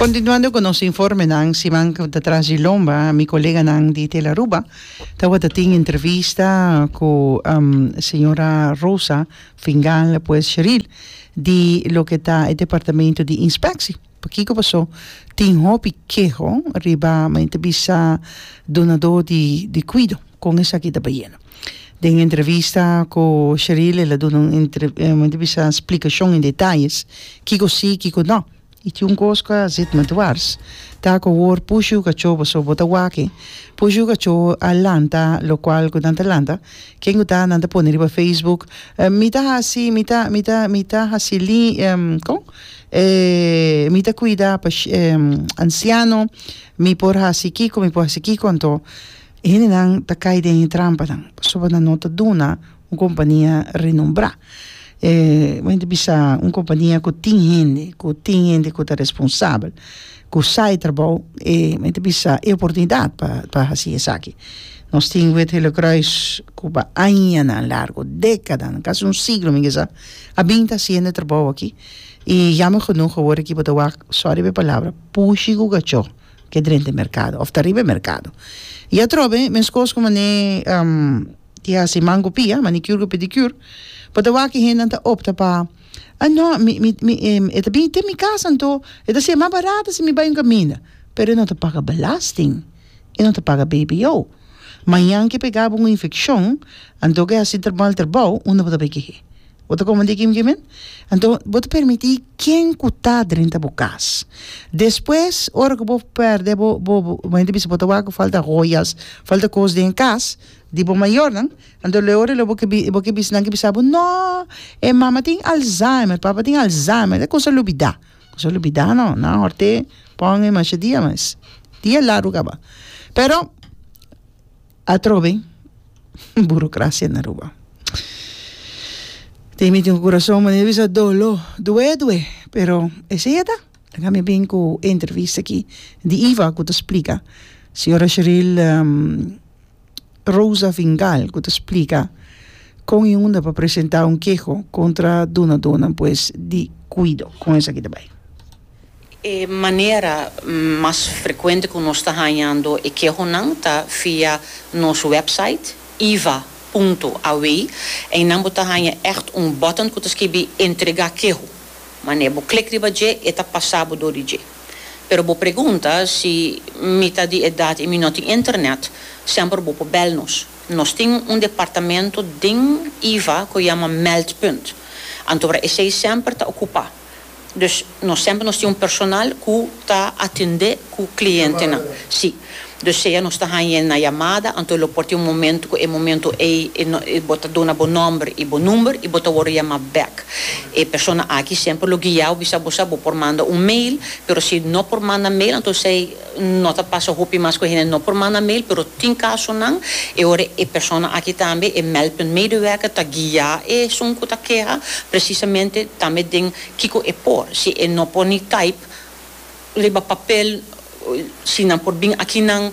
Continuando cu nos informenan, siman cu ta tras di lomba mi coleganan di Tel Aruba tawata tin entrevista cu señora Rosa Fingal pues Sheril di loke ta e departamento di inspectie. Pakico paso? Tin hopi keho riba men ta bisa donador di cuido con esaki ta bayendo. Den entrevista ku Sheril el a duna un entrevista splikashon en detayes kiko si kiko no i tin un kos ku a sit mi dwars ta ku awor pushu kachó pasobra bo ta wak pushu kachó a lanta lokual ku nan ta lanta ken ku ta nan ta pone riba facebook mi ta hasi mi ta mi ta mi ta hasi ko mi ta kuida ansiano mi por hasi kiko mi por hasi kiko anto. E hendenan ta kai den e trampanan pasobra nan no ta duna un kompania renombrá. bo hende bisa un kompania ku tin hende, ku tin hende ku ta responsabel, ku sa e trabou, e bo hende ta bisa e oportunidat pa pa hasi esaki. Nos tin Wit Helekruis ku pa añanan largu, dékadanan, kasi un siglo mi ke sa, a bin ta hasiendo e trabou aki, i jammer genoeg awor aki bo ta wak, sòri pa e palabra, pushi ku kachó ke drente merkado òf ta riba e merkado. I atrobe meskos ku manera di hasi mangu pia, manicure ku pedicure, bo ta wak e hendenan ta opta pa a nò mi mi mi e ta bini te mi kas anto e ta siña mas barato si mi bai un kaminda pero e no ta paga belasting, e no ta paga BBO. Mañan ke pegabo un infekshon anto ke hasi trabou al trabou unda bo ta bai kehé. Bo ta komo diki mi men? Anto bo ta permiti ken ku ta drenta bo kas. Despues ora ku bo pèrdè bo bo bo hende bisa bo ta wak ku falta hoyas falta kos den kas di bo mayornan anto luego di bo ke bo ke bisa nan ke bisa bo nò e mama tin alzheimer e papa tin alzheimer e kosa lubida kosa lubida nò nan a hòrte pon e masha dia mas dia largu kaba pero Atrobe burocracia na Aruba. Tin mi tin un curason manera di bisa dolo, due due pero esey a ta. Laga mi bin cu e entrevista aki di Iva cu ta splica, señora Sheril Rosa Fingal cu ta splica con e unda pa presenta un keho contra dunadonan pues di cuido. Con esaki ta bay. E manera mas frekuente ku nos ta hañando e kehonan ta via nos wèpsait iva punto aw. Einan bo ta haña ègt un button ku ta skibi Entregá keho. Wanneer bo klik riba dje e ta pasá bo dor di dje. Pero bo pregunta si mi ta di edat i mi no tin internet, semper bo por bèl nos. Nos tin un departamento den iva ku yama Meldpunt, anto esei semper ta okupá. Dus nos semper nos tin un personal ku ta atendé ku klientenan. Sí. Dus sea nos ta hañ'é na yamada, anto lo por tin un momentu ku e momentu ei bo ta duna bo nòmber i bo number i bo ta wòrdu yamá bèk. E persona aki semper lo guia'bo, bisa bo sa bo por manda un mail, pero si no por manda mail anto esei. No ta pasa hopi mas cu hende no por manda mail, pero tin casonan e ora e persona aki tambe, e Meldpuntmedewerker, ta guia esun cu ta keha precisamente tambe den kico e por. Si e no por ni type riba papel, si nan por bin akinan.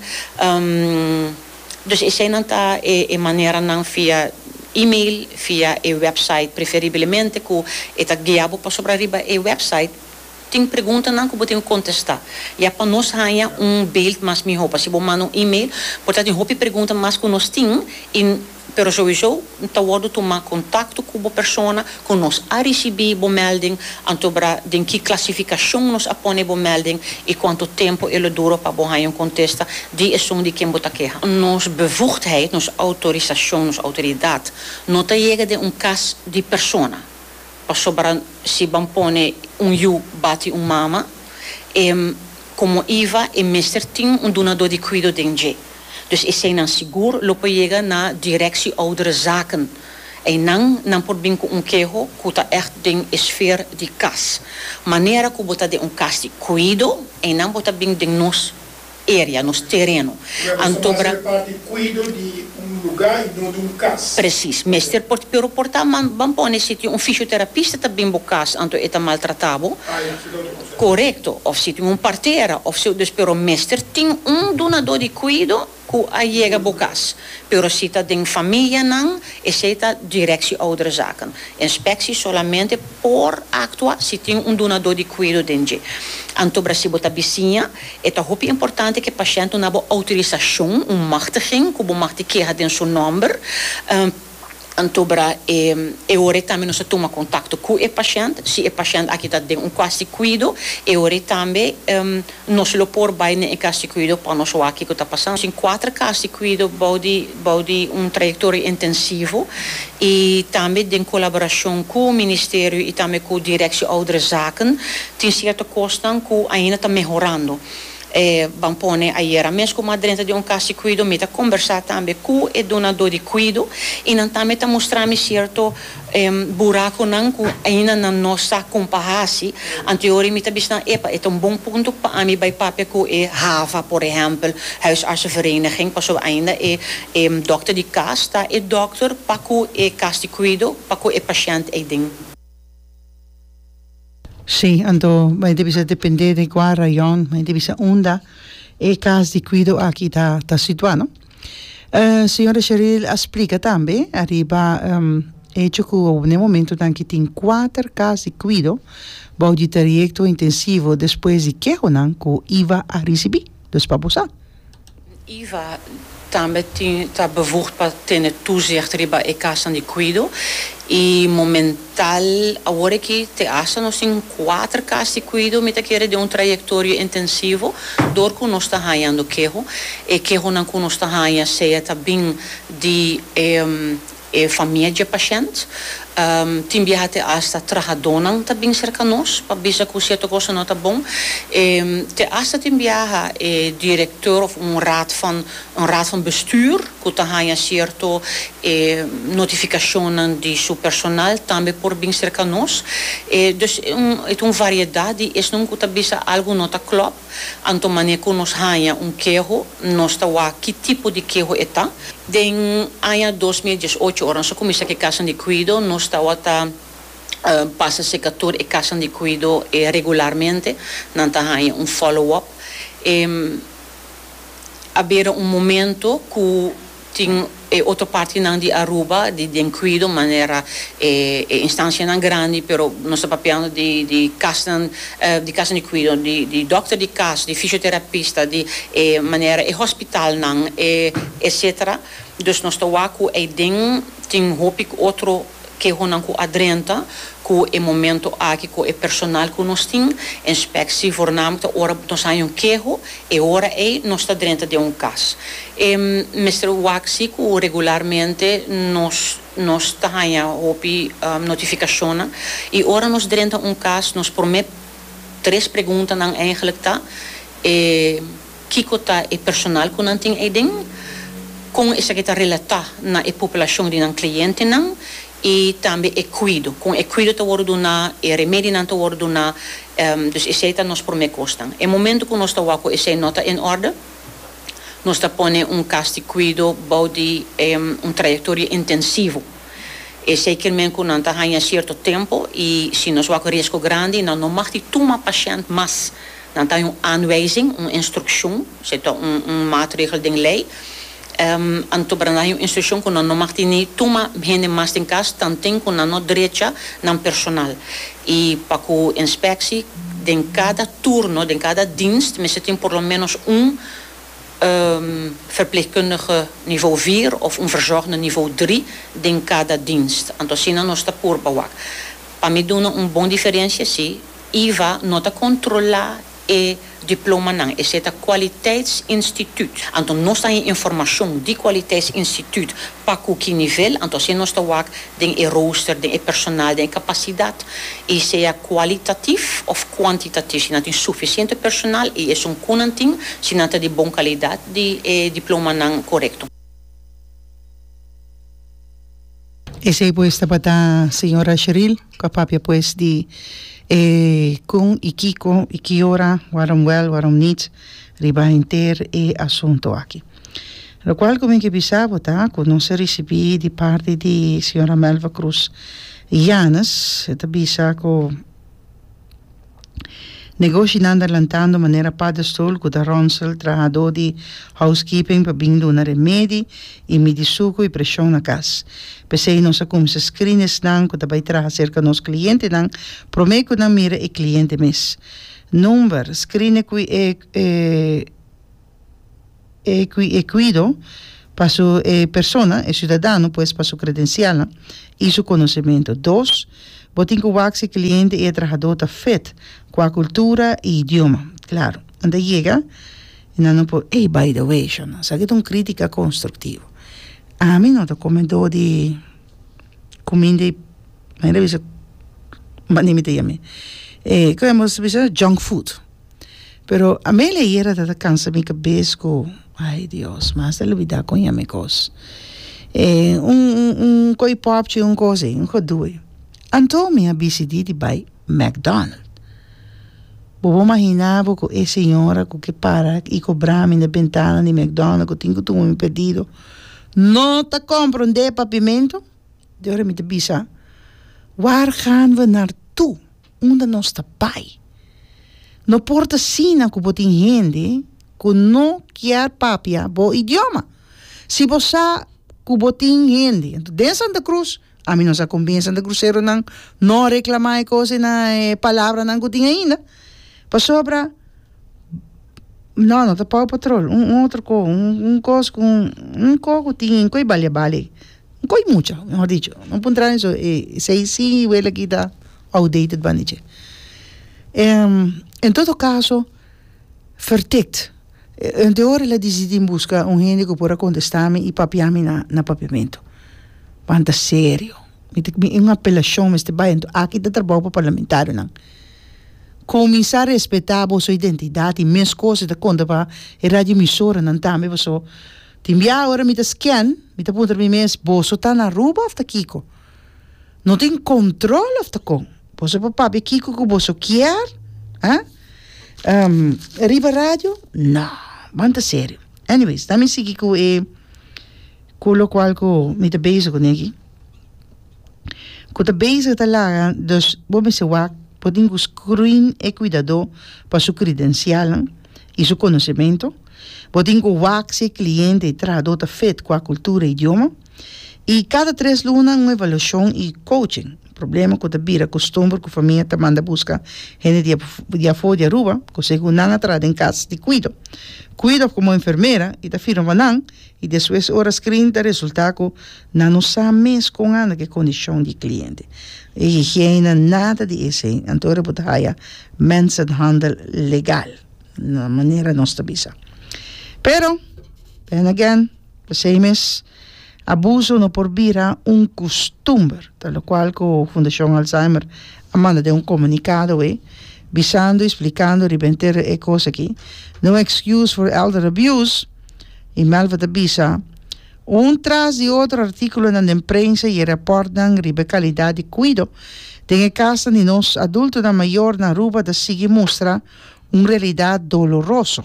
Dus eseinan ta e maneranan via email, via e website, preferiblemente cu e ta guia bo pasobra riba e website. Tin preguntanan ku bo tin ku kontestá ya pa nos haña un beeld mas mihó. P'así bo manda un email por ta den hopi pregunta mas ku nos tin i pero souiso ta wòrdu tumá kontakto ku bo persona ku nos a risibí bo mèlding anto bra den ki klasifikashon nos a pone bo mèlding i kuantu tempu e lo duro pa bo haña un kontesta di esun di ken bo ta keha. Nos bevugdheid, nos outorisashon, nos outoridat no ta yega den un kas di persona. Pasobra si ban pone un yu bati un mama, e komo iva e mester tin un dunadó di kuido den dje. Dus eseinan sigur lo por yega na Directie Ouderenzaken. Einan nan por bin ku un keho ku ta ègt den e sfeer di kas. Manera ku bo ta den un kas di kuido, einan bo ta bin den nos. Area, nos tereno. Anto bra. Mester parti cuido di un luga y no di un cas. Precis. Mester por, pero por ta man, ban pone si tin un fisioterapista ta bin bo cas anto e ta maltrata bo. Ah ya, si no ta cosa. Corecto. Of si tin un partera of si, dus pero mester tin un dunador di cuido cu a yega bo cas. Pero si ta den famia nan, esey ta Directie Ouderzaken. Inspectie solamente por actua si tin un dunador di cuido den dje. Anto bra si bo ta bisiña E ta hopi importante ku e pashènt duna bo outorisashon, un machtiging, ku bo mag di keha den su nòmber. Anto bra e ora ei tambe nos ta tuma kontakto ku e pashènt. Si e pashènt aki ta den un kas di kuido, e ora ei tambe nos lo por bai na e kas di kuido pa nos wak kiko ta pasando. Tin kuater kas di kuido bou di. bou di un trayectoria intensivo y tambe den colaboracion cu Ministerio y tambe cu Directie Ouderenzaken tin cierto cosnan cu ainda ta mehorando. E ban pone ayera mes cu ma drenta di un cas di cuido mi ta conbersa tambe cu e dunador di cuido y nan tambe ta mustrami cierto E buraconan cu ainda nan no sa con pa haci, anteori mi ta bishi nan epa e ta un bon punto pa ami bay papia cu e hava, por ehempel, huisartsenvereniging, pasobra ainda e e dokter di cas ta e dokter pa cu e cas di cuido pa cu e pashent ey den. Sí, anto bay debe ser depende de cua rayon, bay debe ser unda e cas di cuido aki ta ta situa, no? Señora Sheril a splica tambe ariba hecho cu na e momentonan ki tin cuater cas di cuido bou di trayecto intensivo despues di kehonan cu iva a ricibi dus pa bo sa. Iva tambe ta bevoegd pa tene toezicht riba e casnan di cuido y momen. Tal awor aki te hasta nos tin kuater kas di kuido mi ta kere den un trayektorio intensivo dor ku nos ta hañando keho. E kehonan ku nos ta haña sea ta bin di e famia dje pashènt, tin biaha te hasta trahadónan ta bin serka nos pa bisa ku sierto kos no ta bon. Te hasta tin biaha e direkteur òf un raad van, un raad van bestuur, cu ta haña cierto e notificacionnan di su personal tambe por bin cerca nos. E dus e un e ta un variedad di esnan cu ta bisa algo no ta clop, anto mane cu nos haña un keho nos ta wak ki tipo di keho e ta. Den aña dos mil diesocho ora nos a cuminsa cu e casanan di cuido nos tawata pasa cerca tur e casanan di cuido e regularmente, nan ta haña un follow up e. a bira un momento cu tin e otro partinan di Aruba di den cuido manera e e instancianan grandi pero nos ta papiando di di casnan di casnan di cuido di di dokter di cas di fisioterapista di e manera e hospitalnan e etcetera. Dus nos ta wak cu aiden tin hopi otro. kehonan ku a drenta ku e momento aki ku e personal ku nos tin, enspeksi voornaamlik ta ora nos haña un keho, e ora ei nos ta drenta den un kas. E mester wak si ku regularmente nos nos ta haña hopi notifikashonnan i ora nos drenta un kas nos promé tres preguntanan, eigenlijk ta, e. Kiko ta e personal ku nan tin eiden? Kon esaki ta relatá na e populashon di nan klientenan? I tambe e kuido, kon e kuido ta wòrdu duná, e remedinan ta wòrdu duná? Dus esei ta nos promé kosnan. E momentu ku nos ta wak ku esei no ta en òrde, nos ta pone un kas di kuido bou di un trayektoria intensivo. Esei kil men ku nan ta haña sierto tempu i si nos wak ku riesgo grandi, nan no mag di tuma pashènt mas. Nan ta un aanwijzing, un instrukshon, si ta un un maatregel den lei. Anto para nan un instrukshon ku nan no mag tini tuma hende mas den kas tanten ku nan no drecha nan personal. I pa ku inspeksi den kada turno, den kada dienst mester tin por lo ménos un verplegkundige nivo vier òf un verzorgende nivo dri den kada dienst. Anto asina nos ta purba wak. Pa mi duna un bon diferensia, sí. Iva no ta kontrolá e diplomanan, esei ta kwaliteitsinstituut. Anto nos ta hin informashon di kwaliteitsinstituut pa ku ki nivel, anto asina nos ta wak den e rooster, den e personal, den e kapasidat, i sea kualitatif òf kuantitatif, si nan tin sufisiente personal i esun ku nan tin, si nan ta di bon kalidat di e diplomanan korekto. Esey pues tabata señora Sheril cu a papia pues di e con y kico y ki ora waarom wel waarom niet riba henter e asunto aki. Lo cual cu mi ke bisa bo ta cu nos a ricibi di parti di señora Melva Cruz Yanez e ta bisa cu Negoshinan ta lantando manera padestol cu ta ronsel trahador di housekeeping pa bin duna remedi y midi sucu y presion na cas. P'esey nos a cuminsa scrina esnan cu ta bay traha cerca nos clientenan prome cu nan mira e cliente mes. Number, scrina cu e e. e cui e cuido pa su e persona e ciudadano pues pa su credencialnan y su conocemento dos bo tin cu wak si e cliente y e trahador ta fit cu a cultura y idioma claro nan ta yega y nan no por ey by the way sho nan sa ki ta un critica constructivo ami no ta comedor di cuminda y manera bisa manera mi ta yami e kico nos ta bisa junk food Pero amei la yera ta ta kansa mi kabes ku ai Dios mas ta lubidá kon ya mi kos e un un un koi pòpchi un kos ei un godu ei anto mi a bisidí di bai McDonald bobo maginá bo ku e señora ku ke para i kobrá mi na bentana di McDonald ku tin ku tumo mi pedido no ta komprondé papimentu de ora mi ta bisa waar gaan we naar toe. unda nos ta bai. No por ta asina ku bo tin hende ku no kier papia bo idioma. Si bo sa ku bo tin hende den Santa Cruz, ami no sa kon bin e santa cruseronan no a reklamá e kos na e palabranan ku tin ainda, pasobra no, no ta Paw Patrol, un otro ko, un kos ku, un ko ku tin, un ko i bali a bali. Un koi mucha, mehor dicho. Lo por entra den su e seis si y wele aki ta outdated banda dje. En todo caso, verdict, hende ora el a dicidi busca un hende cu por a contesta mi y papia mi na papiamento. Pan ta serio. Mi ta cuminsa un apelacion mester bay ento. Aki ta trabao pa parlamentarionan. Cuminsa respeta boso identidad y mes cosa ta conta pa e radio emisoranan tambe pasobra. Tin bia ora mi ta scan, mi ta puntra mi mes, boso ta na Aruba of ta kiko? No tin control of ta con? Boso por papia kiko cu boso kier? Ah? Um, riba radio? No, ban ta serio. Anyways, ta mi sigui cu e, cu locual cu mi ta bezig cu neki, cu ta bezig ta laga, dus bo mester wak, bo tin cu screen e cuidado pa su credencialnan. i su konosementu. Bo tin ku wak si e kliente i trahadó ta fit ku a kultura i idioma. I kada tres luna un evaluashon i kouching. Problema ku ta bira kustumber ku famia ta manda buska hende di di afó di Aruba ku segun nan a traha den kas di kuido. Kuido of komo enfermera i ta firma pa nan i despues ora skrin ta resultá ku. Na no sa mes kon anda ku e kondishon di e kliente. E higiena nada di esei. Anto ora bo ta haya mensenhandel legal, na manera nos ta bisa. Pero, then again, p'esei mes abuso no por bira un kustumber, ta lokual ku Fundashon Alzheimer a manda den un komunikado awor bisando i splikando riba henter e kos aki, No excuse for elder abuse, i Melfa ta bisa. Un tras di otro artíkulonan den prensa i e repòrtnan riba e kalidat di kuido den e kasnan di nos adultonan mayor na Aruba ta sigui mustra un realidat doloroso,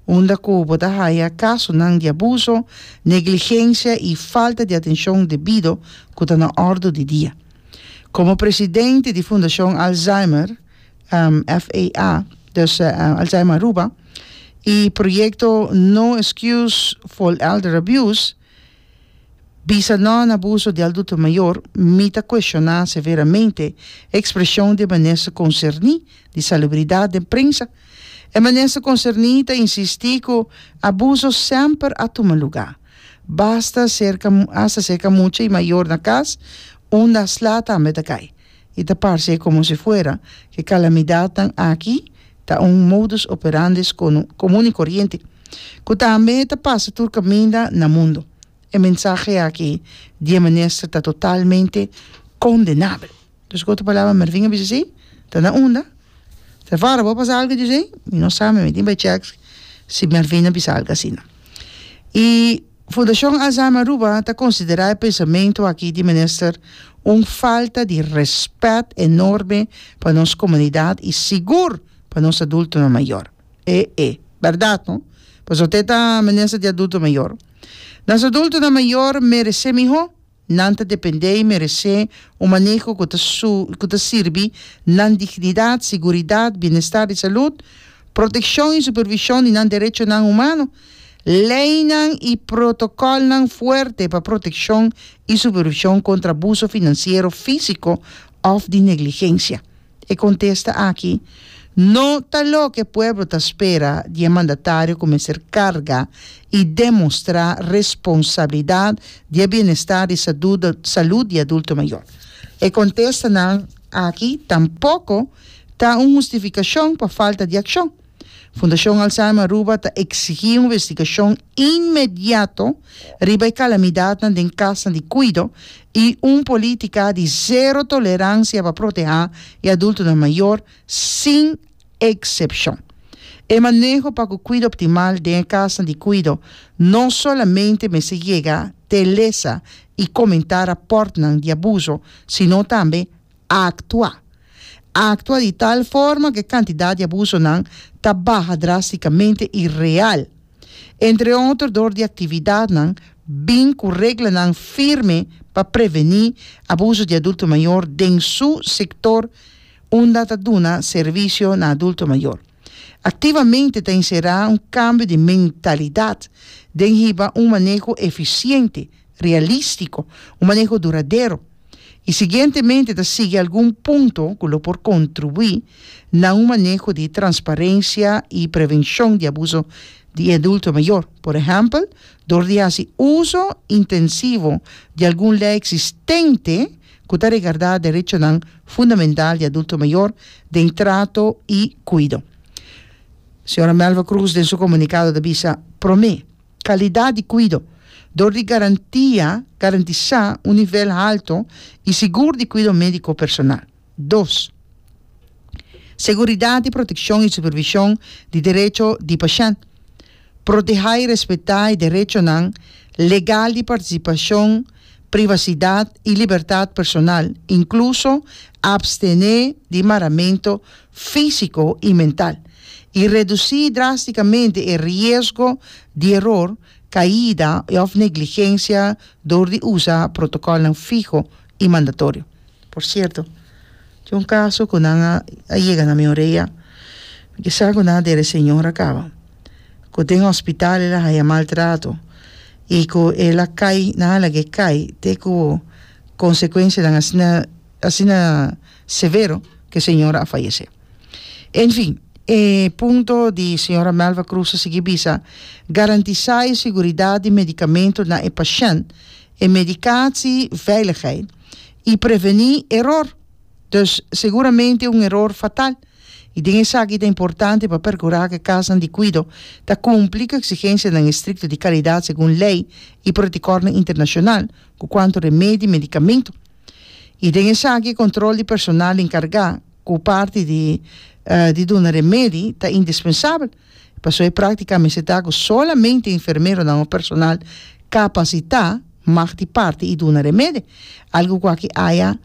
unda ku bo ta haya kasonan di abuso, negligensia i falta di atenshon debido ku ta na òrdu di dia. Komo presidente di Fundashon Alzheimer, FAA, dus Alzheimer Aruba, y proyecto No Excuse for Elder Abuse, Bisa no na abuso di adulto mayor, mi ta cuestiona severamente e expresion di e minister concerni di salubridad den prensa. E minister concerni ta insisti cu abuso semper a tuma lugar, basta cerca hasta cerca mucha y mayor na cas unda a sla tambe ta cay. I ta parse komo si fuera ku e kalamidatnan aki ta un modus operandi skono komun i koriente, ku tambe ta pasa tur kaminda na mundu. E mensahe aki di e minister ta totalmente kondenabel. Dus ku otro palabra Mervin a bisa si ta na unda. Trevor, bo a pasa algu di esei? Mi no sa, mi tin bai check si Mervin a bisa algu asina. I. Fundashon Alzheimer Aruba ta konsiderá e pensamentu aki di minister un falta di rèspèt enorme pa nos komunidat i sigur pa nos adultonan mayor. E e bèrdat no, pasobra te ta minister di adulto mayor. Nos adultonan mayor meresé mihó Nan ta dependé i meresé un maneho ku ta ku ta sirbi nan dignidat, siguridat, bienestar di salud, protekshon i supervishon di nan derechonan humano. Leinan i protokòlnan fuerte pa protekshon i supervishon kontra abuso finansiero, físiko òf di negligensia. E kontesta aki no ta loke pueblo ta spera di e mandatario ku mester karga i demostrá responsabilidat di e bienestar di salud di adulto mayor. E kontestanan aki tampoko ta un hustifikashon pa falta di akshon. Fundashon Alzheimer Aruba ta eksigí un investigashon inmediato riba e kalamidatnan den kasnan di kuido i un polítika di sero toleransia pa protehá e adultonan mayor sin eksepshon. E maneho pa ku kuido optimal den e kasnan di kuido no solamente mester yega te lesa i komentá rapòrtnan di abuso, sino tambe a aktua. A aktua di tal forma ku e kantidat di abusonan ta baha drástikamente i real, entre otro dor di aktividatnan bin ku reglanan firme pa prevení abuso di adulto mayor den su sektor unda ta duna servisio na adulto mayor. Activamente ta encera un cambio di mentalidad den hiba un maneho eficiente, realistico, un maneho duradero, y siguientemente ta sigui algun punto cu lo por contribui na un maneho di transparencia y prevencion di abuso di e adulto mayor, por ehempel, door di haci uzo intensivo di algun ley existente cu ta regardá derechonan fundamental di adulto mayor den trato y cuido. Sra. Melva Cruz den su comunicado ta bisa, Prome, calidad di cuido, dor di garantia, garantisa, un nivel halto y sigur di cuido medico personal. Dos. Seguridad di proteccion y supervision di derecho di pashent. Protehá i respetá e derechonan legal di partisipashon, privasidat i libertat personal, inkluso apstené di maramentu físiko i mental, i redusí drástikamente e riesgo di eror, kaida òf negligensia dor di usa protokòlnan fiho i mandatorio. Por cierto tin un caso cu nan a a yega na mi orea di sa cu nan a dere señora caba cu den hospital el a haya maltrato y cu el a cay nan a lague cay te cu consecuencianan asina asina severo cu e señora a fayece enfin e punto di señora Melva Cruz a sigui bisa garantisa e seguridad di medicamento na e pashent e medicatie veiligheid. i prevení eror, dus seguramente un eror fatal, i den esaki ta importante pa perkurá ku e kasnan di kuido ta kumpli ku eksigensianan estrikto di kalidat segun lei i protokolnan internashonal ku kuantu remedi i medikamentu. I den esaki e kontrol di personal enkargá ku parti di duna remedi ta indispensabel. Pasobra e práktika a mester ta ku solamente enfermeronan o personal kapasitá mag di parti i duna remede, algu kua ki aya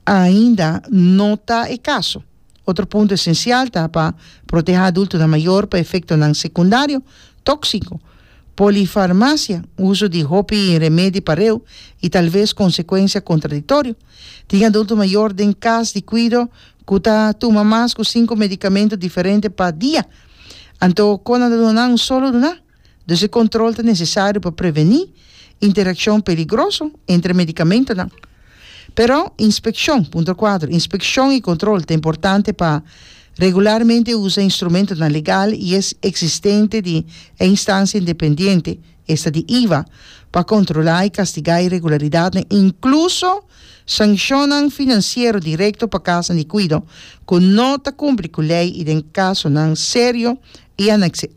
ainda no ta e kaso. Otro punto esensial ta pa protehá adultonan mayor pa efektonan sekundario tóksiko, polifarmasia, uso di hopi remedi pareu i talves konsekuensia kontradiktorio. Tin adulto mayor den kas di kuido cu ta tuma mas cu cinco medicamento diferente pa dia. Anto con nan ta duna nan un solo duna? Dus e control ta necesario pa preveni interaccion peligroso entre e medicamentonan. Pero, inspeccion, punto cuatro, inspeccion y control ta importante pa regularmente usa instrumentonan legal y es existente di e instancia independiente, Esta di iva pa kontrolá i kastigá iregularidatnan, inkluso sanshonnan finansiero direkto pa kasnan di kuido ku no ta kumpli ku lei i den kasonan serio i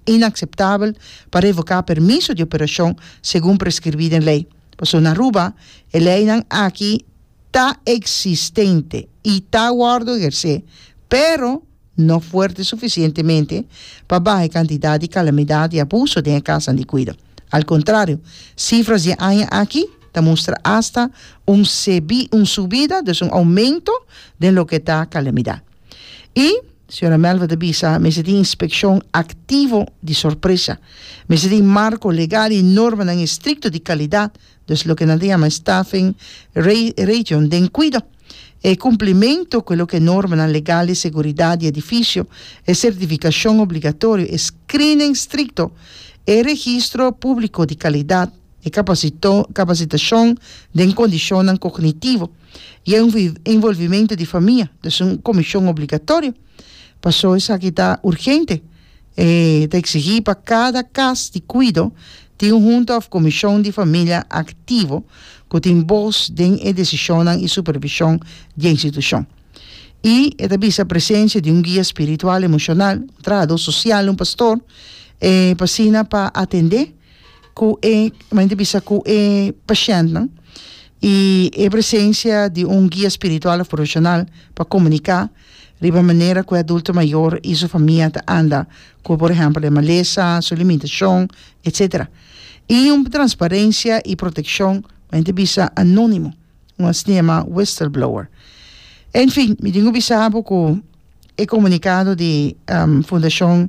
inakseptabel pa revoká permiso di operashon segun preskribí den lei. Pasobra na Aruba e leinan aki ta eksistente i ta wòrdu ehersé, pero, no fuerte suficientemente pa baha e cantidad di calamidad y abuso den e casanan di cuido. Al contrario, cifras di e aña aki ta mustra hasta un sebi, un subida, dus un aumento den loke ta calamidad. Y, Sra. Melva ta bisa, mester tin inspeccion activo di sorpresa, mester tin marco legal y normanan estricto di calidad, Dus loke nan ta yama staffing ration den cuido, e cumplimento cu e loke normanan legal di seguridad di edificio, e certificacion obligatorio, e screening stricto, e registro publico di calidad, e capacitacion den condicionnan cognitivo y e envolvimento di famia, dus un comision obligatorio. Paso esaki ta urgente. E ta eksigí pa kada kas di kuido tin un hunta òf komishon di familia aktivo ku tin bos den e desishonnan i supervishon di e institushon. I e ta bisa presensia di un guia spiritual emoshonal, un trahadó sosial, un pastor, e pa asina pa atendé ku e kuma nan ta bisa ku e pashèntnan i e presensia di un guia spiritual òf profeshonal pa komuniká. riba manera ku e adulto mayor i su famia ta anda ku por ehèmpel e malesa, su limitashon, etsetera. I un transparensia i protekshon ku hende bisa anónimo, un asina yamá whistleblower. En fin, mi tin ku bisa bo ku e komunikado di Fundashon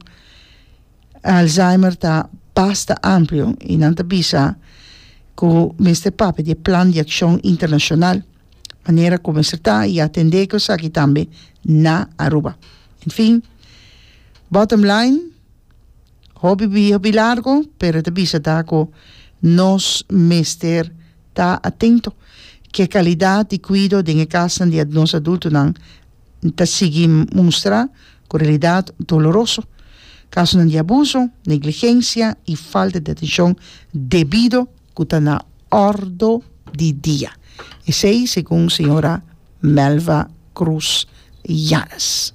Alzheimer ta basta amplio i nan ta bisa ku mester papia di e plan di akshon internashonal. manera ku mester ta i atendé ku esaki tambe na Aruba. En fin, bottom line, hopi bia, hopi largo, pero e ta bisa ta ku nos mester ta atento ke kalidat di kuido den e kasnan di nos adultonan ta sigui mustra ku realidat doloroso, kasonan di abuso, negligensia i falta di atenshon debido. ku ta na ordo di dia, esei segun señora Melva Cruz Yanez.